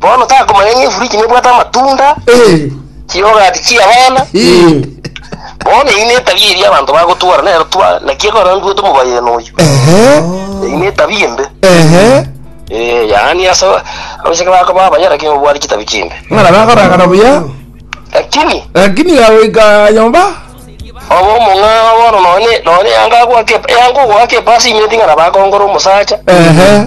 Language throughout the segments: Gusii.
Bono takomanya ng'a efuriji nebwate amatunda, Eh, chiyogati chi'abana. eh, Bono eyio netabia eria abanto bagotwora nero twa, naki ekora ntwete omobayeno oyio. ehe, Eyio netabia embe. ehe. Eh, yaani ase abachake bakoba abayara king'o bwari chitabi chimbe. Ng'ana bakoragana buya, Lakini lakini gagoika nyomba. oba omong'ao bono nonye nonye yanga agwake yanga ogwake epasi inywe ting'ana bakongora omosacha. Ehe.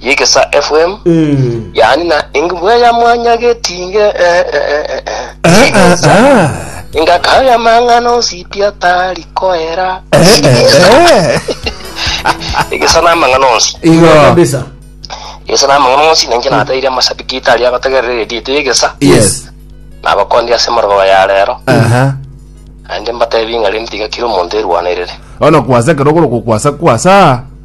yegesa FM yaani na engibwe ya mwanya getinge eh, eh, eh, eh, eh. Ah, ah, Yegesa ah. engakaya mang'ana onsiti atari koera Eh, eh, eh. egesa namang'ana onsi Igo. kabisa egesa namang'ana onsi nanje nataire amashabiki itari agotegerera erediete yegesa Yes. nabakondi ase morogoba ya rero Aha. ande mbatebi ng'a rende tiga kira omonto erwanerere Ono kwasa kero goro kwasa kwasa.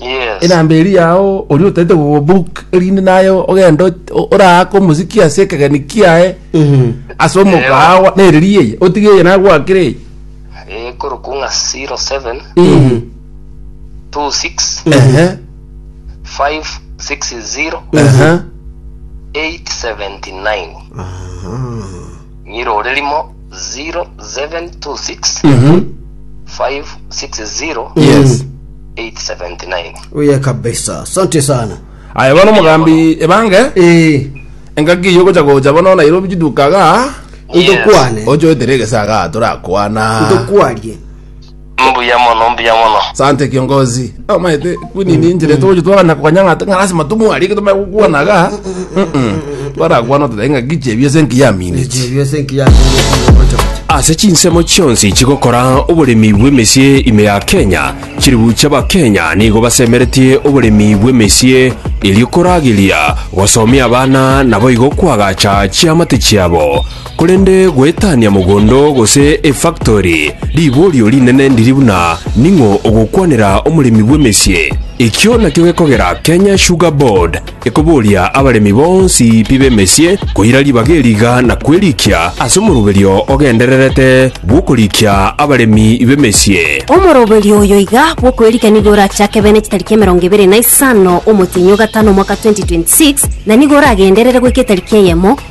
Yes. enamba eria yao oria otaete gobook erinde naye ogenda ot- o- oraake omosiki ase ekegeni kiaye ase omokawa nereri eye otige eye nagwakire eye Eh, korokwo ng'a 07 Ii. 26 Ehe, 560 ehe. 879. Ng'irorerimo 0726 Mhm. 560 Yes. 879. Oye kabisa. Asante sana. Aya bono omogambi ebange Eh, engaki iyo gocha gocha bono Nairobi chidukaga Yes. ndokwane. ochoetere egesaga torakwana Ndokwarie. Mbuya mono, mbuya mono. Sante kiongozi. Oh my te kuni ni njire to jitu ana kwa nyanga tanga lazima tu mwari kitu mwe kwa na ga. Bara kwa no tenga giche bie senki ya mini. ase chinsemo chionsi chigokora oboremi bw'emesie ime ya Kenya, chilifu chi'Abakenya nigo basemeretie oboremi bw'emesie erio korageria gosomia abana naboigo koagacha chiamate chiabo. Korende goetania mogondo gose efaktori, riborio rinene ndiri buna ning'o ogokwanera omoremi bw'emesie. Ekio nakio gekogera Kenya Sugar Board ekoboria abaremi bonsi pi b'emesie koira ribaga eriga na kwerikia ase omoroberio ogendererete bw'okorikia abaremi b'emesie. Omoroberio oyo iga bw'okwerikia nigo orachake bene chitariki emerongo ebere na isano omotienyi o gatano omwaka 2026, na nigo oragenderere goika etariki eyemo,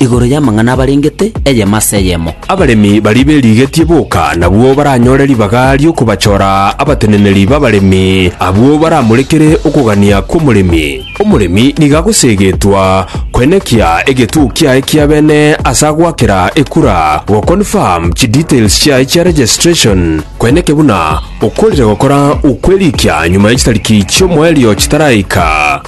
Igoro y'amang'ana abarengete, eyemo ase eyemo. Abaremi baria berigetie boka nabwo baranyore ribaga ri'okobachora abateneneri b'abaremi, abwo baramorekere okogania kw'omoremi. Omoremi nigo agoseegetwa koenekia egetuo kiaye kia bene ase agoakera ekura, goconfirm chidetails chiaye chia registration, koeneke buna okorire gokora okwerikia nyuma ye chitariki chi'omoerio chitaraika.